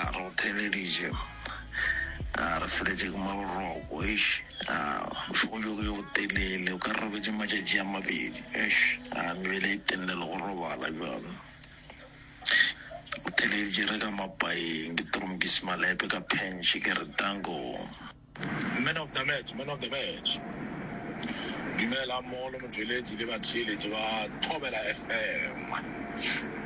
A re go theeleditše, a re feletše ke maboroko, eish, a bošego bjo ke bjo botelele, o ka re robetše matšatši a mabedi, eish, a mebele e tenne le go robala bjalo. Go theeleditše re ka mapaeng, ke trompise malepe ka phentšhe ke re, Danko! Man of the match, man of the match. Dumelang mogolo motšweletši le batheeletši ba Thobela FM.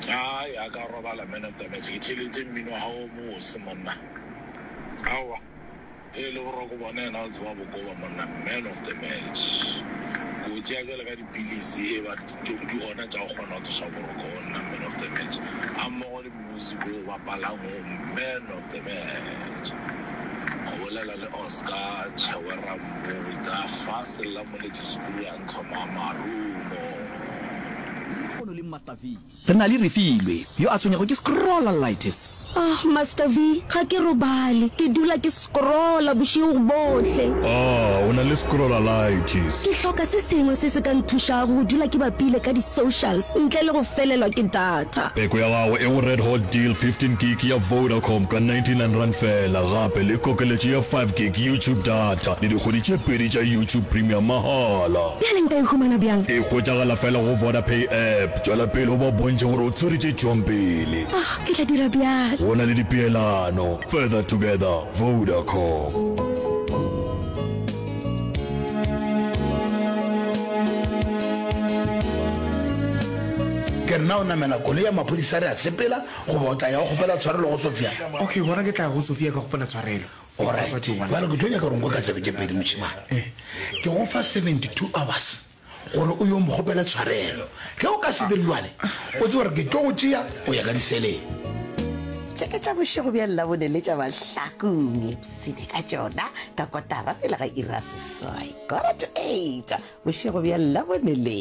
Ai a ka robala man of the match ke theeletše mmino wa gago o mose monna. Aowa e le boroko bona yena o tseba bokoba monna man of the match. Ke o tšea bjale ka dipilisi e ba di gona tša go kgona go tsoša boroko go nna man of the match. A mmogo le Music o bapalang o man of the match. O bolela le Oscar Chewera Mmuta fa Sellamoletši School ya Ntlhoma Marumo. Lehono le Master V. Re na le Refilwe yo a tshwenyego ke scrollitis. Ahh Master V, ga ke robale, ke dula ke. Scrolla bošego bohle. Ah, o na le scrollalitis. Ke hloka se sengwe se se ka nthušago go dula ke bapile ka di-socials ntle le go felelwa ke data. Peko ya gago e go Red Hot Deal, 15 gig ya Vodacom ka 99 rand fela, gape le kokeletšo ya 5 gig YouTube data le dikgwedi tše pedi tša YouTube Premium mahala. Bjale nka e humana bjang? E hwetšagala fela go Vodapay app. Tšwela pele o ba bontšhe gore o tsweretse tšhong pele. Ah, ke tla dira bjalo. Go na le dipeelano. Further together, Vodacom. Ke nna o namela koloi ya maphodisa re a sepela goba o tla ya o kgopela tshwarelo go Sofia? Okay, gona ke tla go Sofia ka kgopela tshwarelo. Alright, bjale ke tlo nyaka gore nko ka tsebe tše pedi mošemane. Ke go fa 72 hours. gore o yo mokgopele tshwarelo ge o ka se dire jwale o tse gore ke tlo go tšea go ya ka diseleng tše ke tša bošego bja llabone le tša bahlakong epsene ka tšona ka kotara pele ga ira seswai kora to eight bošego bja llabone le